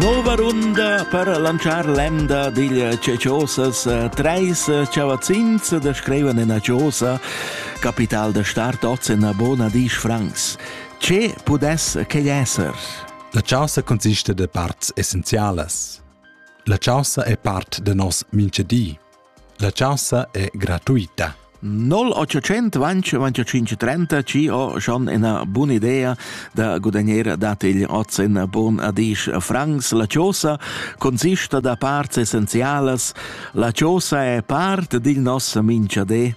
Nova runda per lanzar l'emda dil Ceciosas. Treis chavazzins da scrivan ina chiosa, capital da start oz en bona disch francs. Ce pudess quei esser? La chaussa consiste de parts essenzialas. La chaussa è part de nos minchedi. La chaussa è gratuita. 0800 25 30 ci ho schon ina buna idea da gudagnare dat igl oz in bon adisch francs la chiosa consista da parts essenzialas la chiosa è part digl nos minchadé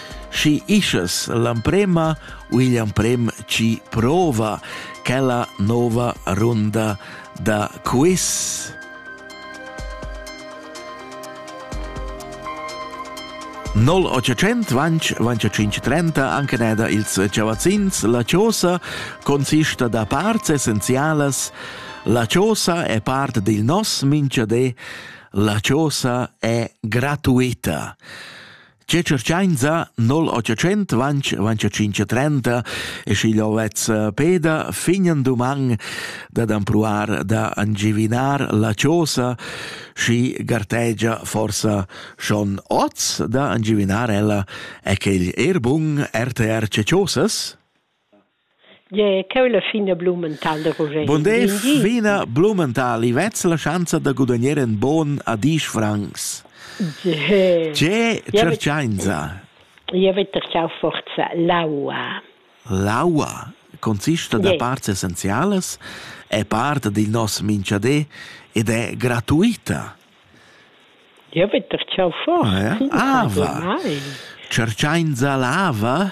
Schi ischas l'amprema u igl amprem chi prova quella nova runda da quiz? Nol 800 vanch vanch 530 anche neda ils chavazzins la chosa consista da parts essenzialas la chosa è part del nos minchadé la chosa è gratuita Tge circenza, 0800 vanch, vanch 530, e schi'l vezz Peda fignan duman dad ampruar da angivinar la chosa, schi gartegia forsa schon oz da angivinar ella e quel erbun RTR Chosas? Gie, cheu la fina Blumenthal da Ruschein. Bonders fina Blumenthal, i vezza la schanza da gudagnar in bon a disch francs. Gie. Gie, cercainza. Io avete ciao forza l'aua. L'aua consiste da parts essenziales, è parte del nostro minchadé ed è gratuita. Io avete ciao forza. Ah, ah va. Cercainza l'ava?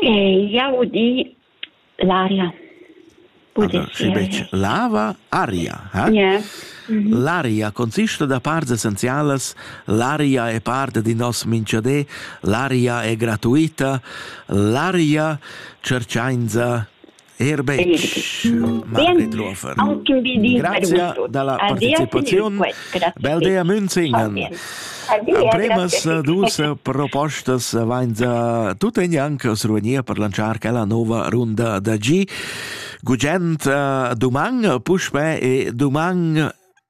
Jau di l'aria. Sche betg lava, aria. Eh? Yeah. Mhm. L'aria consista da parts essenzialas. L'aria è parte di nos minchadé. L'aria è gratuita. L'aria cercainza Er betg, Margrit Lofer. Grazia dalla participaziun. Bel dea Münzingen. Ampremas dus propostas vain da tut en janc sruvenir per lanciar quella nova runda da G. Gugent uh, duman, puspè e duman